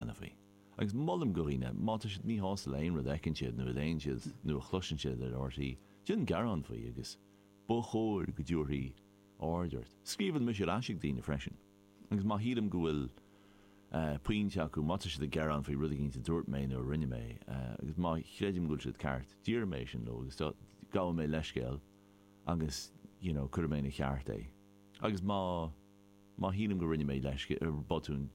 anfaí. Agus molaim do dhaoine, má tá siad míshásta le aon rud a fheiceann siad nó a léann siad nó a chloiseann siad ar RTÉ, déan gearán faoi agus ba chóir go dtabharfaí aird ort. Scríobhann mise ar ais chuig daoine freisin agus má shílim go bhfuil pointe acu, má tá siad ag gearán faoi rud éigin a dúirt mé nó a rinne mé, agus má chreidim go bhfuil siad ceart, deirim é sin leo agus gabhaim leithscéal agus you know cuirim ina cheart é. Agus má. Má shílim go rinne mé leisce ar botún,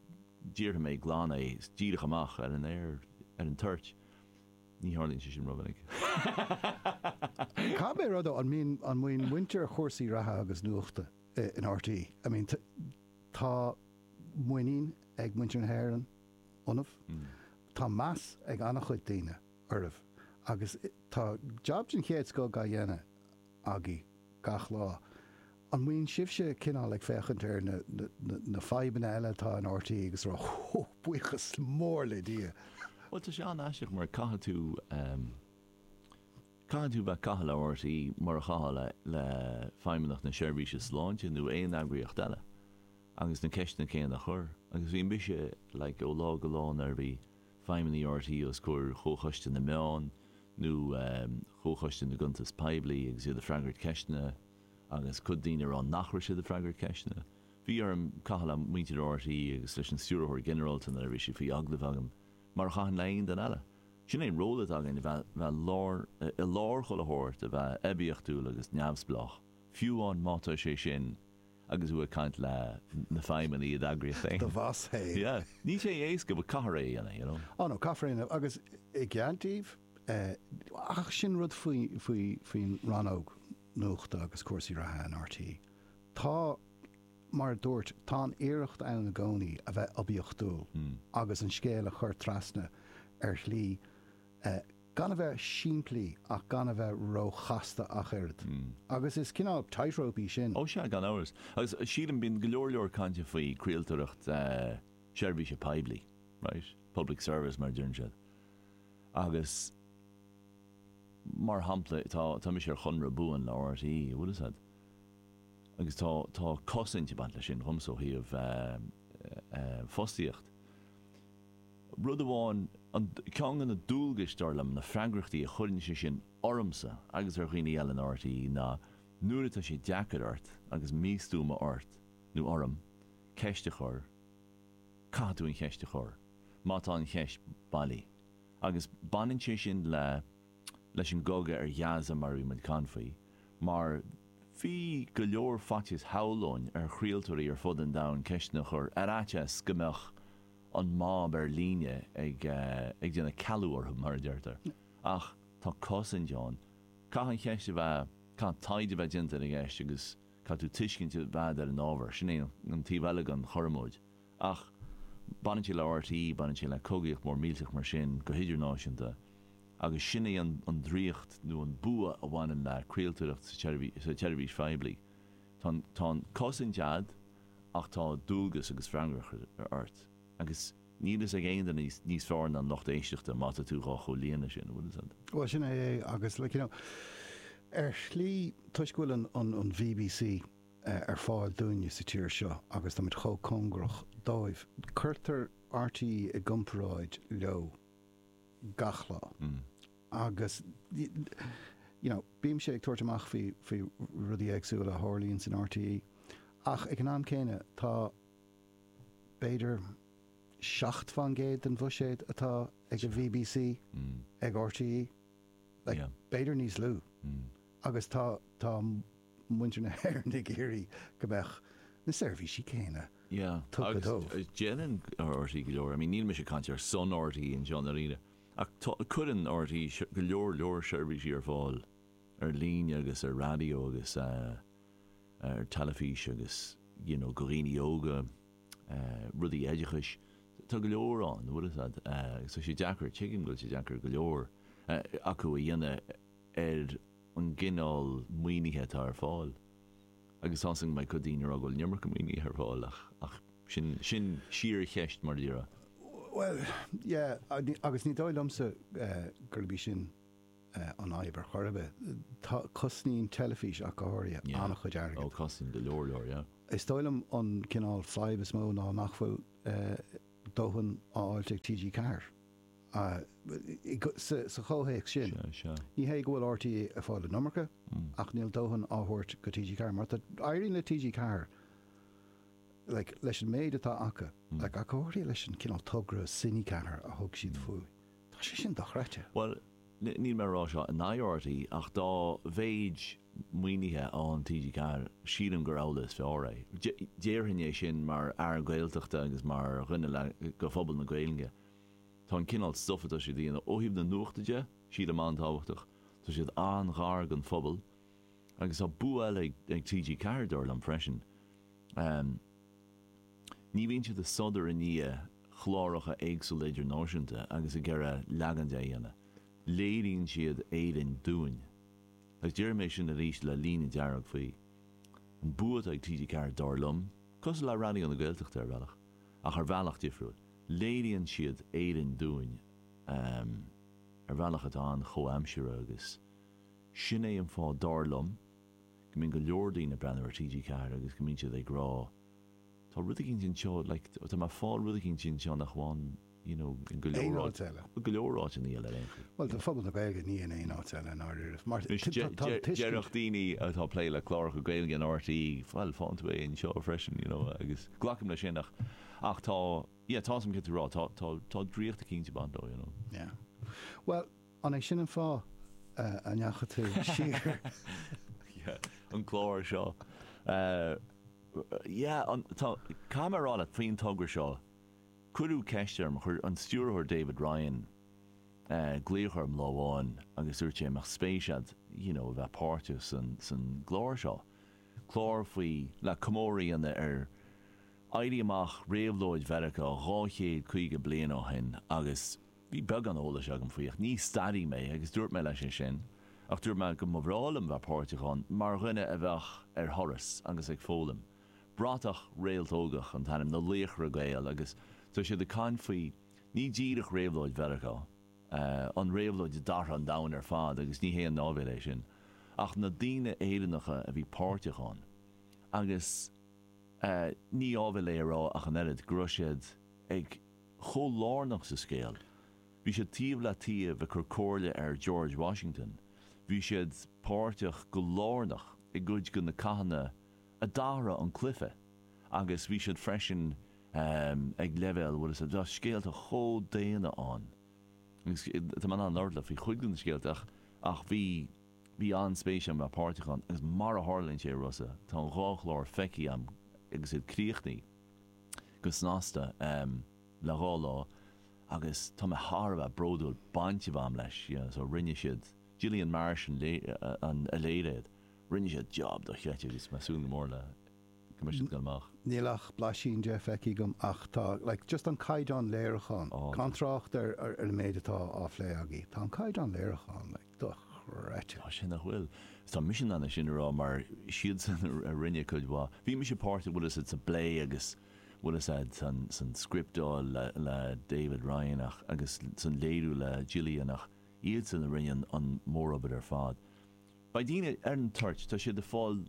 déarfaidh mé glan é, díreach amach, ar an aer, ar an toirt. Ní tharlaíonn sé sin rómhinic. Cogar rud ó, an mbíonn, an mbíonn muintir chúrsaí reatha agus nuachta in RTÉ, I mean tá muinín ag muintir na hÉireann ionaibh, tá meas ag an-chuid daoine oraibh agus tá jab den chéad scoth á dhéanamh. agaibh gach lá. An mbíonn sibhse cineál ag féachaint ar na, na, na, na fadhbanna eile atá in RTÉ agus ag rá Hú, buíochas mór le Dia. Bhuel, tá sé an-aisteach mar caithfidh tú, em, caithfidh tú bheith, caitheamh le RTÉ, mar a chaithfeá le, le Feidhmeannacht na Seirbhíse Sláinte nó aon eagraíocht eile agus na ceisteanna céanna a chur agus bhínn mise, like, ó lá go lá nuair a bhí, feidhmeannaigh RTÉ os comhair Chomhchoiste na Meán nó Chomhchoiste na gCuntas Poiblí agus iad ag freagairt ceisteanna agus cuid daoine ag rá nach raibh siad ag freagairt ceisteanna. Bhí orm caitheamh le muintir RTÉ agus leis an Stiúrthóir Ginearálta nuair a bhí sí faoi agallamh agam, mar a chaithfinn le haon duine eile. Sin é an ról atá againn, a bheith lár, i lár chuile shórt, a bheith oibiachtúil agus neamhspleách, fiú amháin má tá sé sin agus thú ag caint le na feidhmeannaigh i d'eagraíocht féin. Do bhoss féin. Yeah. Níl sé éasca but caithfear é a dhéanamh, you know. Oh no, caithfear é a dhéanamh agus i gcead daoibh, ach sin rud faoin rannóg nuachta agus cúrsaí reatha in RTÉ. Tá, mar a dúirt, tá an iarracht ann i gcónaí a bheith oibiachtúil agus an scéal a chur trasna ar shlí gan a bheith simplí ach gan a bheith róchasta ach oiread. Agus is cineál tightrope í sin. Ó sea, gan amhras. Agus sílim, bíonn go leor leor cainte faoi chraoltóireacht seirbhíse poiblí, right? Public service mar a deireann siad. Agus mar shampla, tá, tá mise ar chonradh buan le RTÉ, an bhfuil 'fhios a'd. Agus tá, tá cosaint ag baint leis sin dhomsa ó thaobh fostaíocht. Rud amháin, an, ceann de na dualgais, dar liom, na freagrachtaí a chuireann sé sin ormsa agus ar dhaoine eile in RTÉ ná nuair atá sé deacair ort agus místuama ort nó orm ceist a chur, caithfidh tú an cheist a chur, má tá an cheist bailí. Agus baineann sé sin le, leis an gcogadh ar Ghaza mar a bhí muid ag caint faoi, mar bhí go leor faitíos, shamhlóinn, ar chraoltóirí ar fud an domhain ceisteanna a chur ar fhaitíos go mbeadh, an mob ar líne ag déanamh cealú orthu, mar a deirtear, ach tá cosaint ann. Caithfidh an cheist a bheith, caithfidh taighde a bheith déanta ar an gceist agus caithfidh tú tuiscint a bheith agat ar an ábhar. Sin é an taobh eile den chothromóid. Ach baineann sé le RTÉ, baineann sé le cogaíocht mhór millteach mar sin go hidirnáisiúnta, agus sin é an draíocht nó an bua a bhaineann le craoltóireacht sa tseirbhís phoiblí. Tá an chosaint a'd ach tá dualgas agus freagracht ort agus níl fhios ag aon duine níos fearr ná an lucht éisteachta má tá tú dhá chomhlíonadh sin, an bhfuil fhios a'd. Bhuel sin é é agus like you know ar shlí toisc go bhfuil an an an bbc ar fáil dúinne sa tír seo agus tá muid chomh cóngarach dóibh, cuirtear RTÉ i gcomparáid leo gach lá. Agus, you know, bímse ag tabhairt amach faoi, faoi rudaí éagsúla a tharlaíonn san RTÉ, ach ag an am céanna, tá b'fhéidir seacht fán gcéad den bhuiséad atá ag an bbc ag RTÉ. Like, Yeah. b'fhéidir níos lú. Agus tá, tá muintir na hÉireann ag iarraidh go mbeadh na seirbhísí céanna Yeah. tugtha dóibh. Agus uh, déanann RTÉ go leor. I mean, níl mise ag caint ar son RTÉ anseo ná aon duine. Ach tá cuireann RTÉ go leor leor seirbhísí ar fáil ar líne agus ar raidió agus ar teilifís agus you know go dhaoine óga, rudaí oideachais, tá go leor ann an bhfuil fhios a'd agus tá sé deacair, tuigim go bhfuil sé deacair go leor acu a dhéanamh ar an gcineál maoinithe atá ar fáil. Agus tá fhios a'm go mbeidh cuid daoine ag rá go bhfuil an iomarca maoinithe ar fáil ach ach sin síorcheist mar a déarfá. Bhuel, yeah, agus ní dóigh liomsa gurb í sin an fhadhb ar chor ar bith. Tá, cosnaíonn teilifís ach go háirithe, an-chuid airgid. Yeah, oh, cosnaíonn go leor leor, yeah. Is dóigh liom an cineál fadhb is mó ná nach bhfuil dóthain á fháilt ag TG4. Sa chomhthéacs sin, ní hé go bhfuil RTÉ ag fáil an iomarca, ach níl dóthain á thabhairt go TG4, mar tá, éiríonn le TG4, like, leis an méid atá acu, like, ach go háirithe leis an cineál togra Cine4 a thug siad faoi, tá sé sin dochreidte. Bhuel, níl mé ag rá seo in aghaidh RTÉ, ach dá mhéid maoinithe a fhaigheann TG4, sílim gur amhlaidh is fearr é. Déarfainn é sin mar fhear Gaeltachta agus mar dhuine le, go phobal na Gaeilge. Tá an cineál stuif atá siad a dhéanamh, ó thaobh na nuachta de, sílim an-tábhachtach. Tá siad an-ghar don phobal. Agus tá bua eile ag TG4, dar liom, freisin. Ní bhíonn siad ag sodar i ndiaidh chláracha éagsúla idirnáisiúnta agus ag iarraidh leagan de a dhéanamh. Léiríonn siad Éirinn dúinn. Agus déarfaidh mé sin arís le líne dearg faoi. An bua atá ag TG4, dar liom, cosúil le Raidió na Gaeltachta, ar bhealach, ach ar bhealach difriúil. Léiríonn siad Éirinn dúinn ar bhealach atá an-chomhaimseartha agus sin é an fáth, dar liom, go mbíonn go leor daoine ag breathnú ar TG4 agus go mbíonn siad ag rá tá rud éigin anseo, like tá mé ag fáil rud éigin anseo nach bhfaighinn you know, i ngo leor áit, i ngo leor áit ina dhiaidh ar aon chaoi. Bhuel, tá phobal na Gaeilge ní in aon áit eile in ár oiread. Mar, déarfadh daoine atá ag plé le cláracha Gaeilge in RTÉ, bhuel, faigheann tú é anseo freisin, you know, agus glacaim leis sin ach, ach tá, yeah, tá, is dóigh liom céard atá tú ag rá, tá, tá, tá draíocht eicínt ag baint leo, you know. Yeah. Bhuel, an é sin an fáth a ndeachaigh tú siar? Yeah, an clár seo. Yeah, an, tá, caithfidh mé a rá leat, faoin togra seo, Cuireadh ceist orm, chuir an stiúrthóir David Ryan glaoch orm lá amháin agus dúirt sé an mbeadh spéis agat you know a bheith páirteach san gclár seo, clár faoi. le comóradh a dhéanamh ar éirí amach, réabhlóid Mheiriceá dhá chéad caoga bliain ó shin agus bhí beagán eolais agam faoi ach ní staraí mé agus dúirt mé leis é sin ach dúirt mé go mba bhreá liom bheith páirteach ann mar dhuine a bheadh ar thuras agus ag foghlaim. Bratach réaltógach an t-ainm na laochra Gael agus tá siad ag caint faoi, ní díreach réabhlóid Mheiriceá, an réabhlóid a d'athraigh an domhan ar fad agus ní haon áibhéil é sin, ach na daoine Éireannacha a bhí páirteach ann. Agus ní áibhéil é a rá ach an oiread go raibh siad chomh lárnach sa scéal. Bhí siad taobh le taobh ag cur comhairle ar George Washington, bhí siad páirteach go lárnach i gcuid de na cathanna, a d'athraigh an cluiche agus bhí siad freisin ag leibhéal bhuel is tá scéalta chomh daonna ann agus tá mé in ann labhairt leat faoi chuid de na scéalta ach ach bhí bhí an-spéis agam a bheith páirteach ann agus mar a tharlaíonn sé, a Rossa, tá an dhá chlár feicthe agam agus iad críochnaithe go snasta le dhá lá agus tá mé thar a bheith bródúil baint a bheith agam leis, you know, so rinne siad Gillian Marsh an a léirigh iad. Rinne siad job dochreidte agus tá mé ag súil go mór le go mbeidh siad dhá scaoileadh amach. Níl ach blaisín de feicthe agam ach tá, like, just an caighdeán léiriúcháin, gan trácht ar an méid atá á phlé agaibh, tá an caighdeán léiriúcháin, like, dochreidte. Tá sé, nach bhfuil. Is tá mise in ann é sin a rá mar siadsan a rinne cuid mhaith. Bhí mise páirteach, bhfuil 'fhios a'd, sa bplé agus, bhfuil 'fhios a'd, san, san scripteáil le, le David Ryan ach, agus san léiriú le Gillian ach iadsan a rinne an, an mórobair ar fad. Beidh daoine ar an toirt, tá sé ar fáil,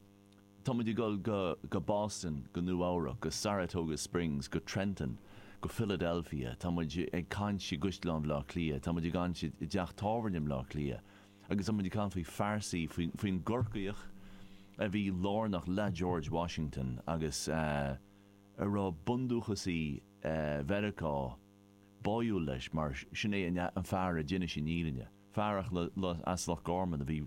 tá muid ag dul go Boston, go Nua Eabhrac, go Saratoga Springs, go Trenton, go Philadelphia, tá muid ag caint i gCaisleán Bhaile Átha Cliath, tá muid ag caint i dteach tábhairne i mBaile Átha Cliath agus tá muid ag caint faoi phearsaí, faoin gCorcaíoch a bhí lárnach le George Washington agus a raibh bundúchasaí Mheiriceá báúil leis mar sin é an fear a d'inis an fhírinne. fearacht leaid as Loch Gorman a bhí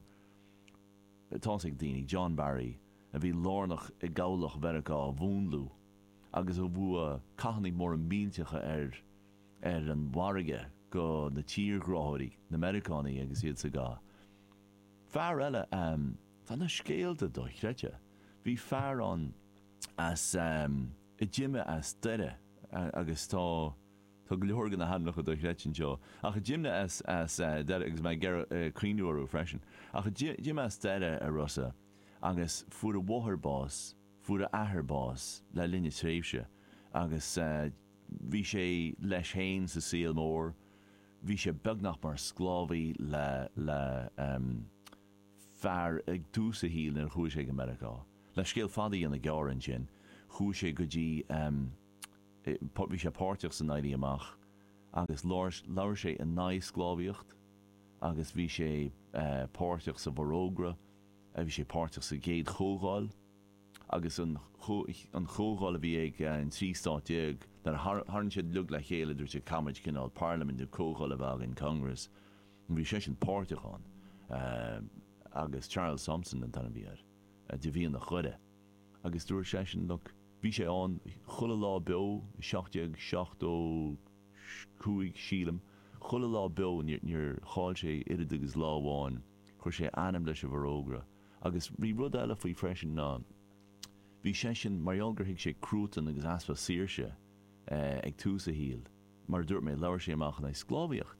tá's ag daoine, John Barry a bhí lárnach i gCabhlach Mheiriceá a mhúnlú agus a bhua cathanna móra millteacha ar ar an bhfarraige go na tírghráthóirí, na Meiriceánaigh agus iad sa gcath. Fear eile ehm. tá na scéalta dochreidte. Bhí fear ann as ehm. a d'imigh as Doire agus tá. Tá go leor de na hainmneacha dochreidte anseo, ach d'imigh as Doire, agus mé ag cuimhniú orthu freisin, ach d'imigh as Doire ar aon nós, agus fuair a mháthair bás, fuair a athair bás le linn a tréimhse, agus bhí sé leis féin sa saol mór, bhí sé beagnach mar sclábhaí le fear ag tús a shaoil nuair a chuaigh sé go Meiriceá. Le scéal fada dhéanamh gearr ansin, chuaigh sé go dtí. Bhí sé páirteach san Éirí Amach agus labhair sé in aghaidh sclábhaíocht agus bhí sé páirteach sa bhForógra, bhí sé páirteach sa gCéad Chomhdháil agus an Chomhdháil a bhí ag an trí stát déag, nuair a tharraing siad uilig le chéile dúirt siad caithfimid cineál parlaimint nó comhdháil a bheith againn, congress, bhí seisean páirteach ann agus Charles Thomson an t-ainm a bhí air, de mhianach Dhoire. Agus dúirt seisean, Look, bhí sé ann chuile lá beo i seacht déag seachtó cúig, sílim, chuile lá beo, níor chaill sé oiread agus lá amháin, chuir sé a ainm leis an bhForógra. Agus bhí rud eile faoi freisin ná bhí seisean, mar gheall gur thuig sé cruatan agus easpa saoirse ag tús a shaoil, mar a dúirt mé, labhair sé amach in aghaidh sclábhaíocht.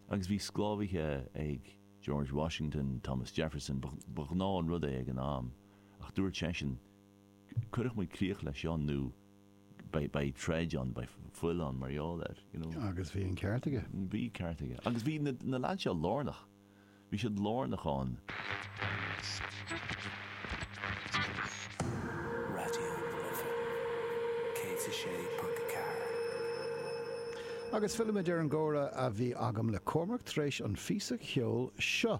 Agus bhí sclábhaithe ag George Washington, Thomas Jefferson, ba ghnáth an rud é ag an am. ach dúirt seisean, Cuirfidh muid críoch leis seo nó beidh troid ann, beidh fuil ann mar gheall air, you know. Agus bhí an ceart aige. Bhí ceart aige. Agus bhí na lads seo lárnach, bhí siad lárnach ann. Raidió na Life 106.4. Agus fillimid ar an gcomhrá a bhí agam le Cormac tar éis an phíosa cheoil seo.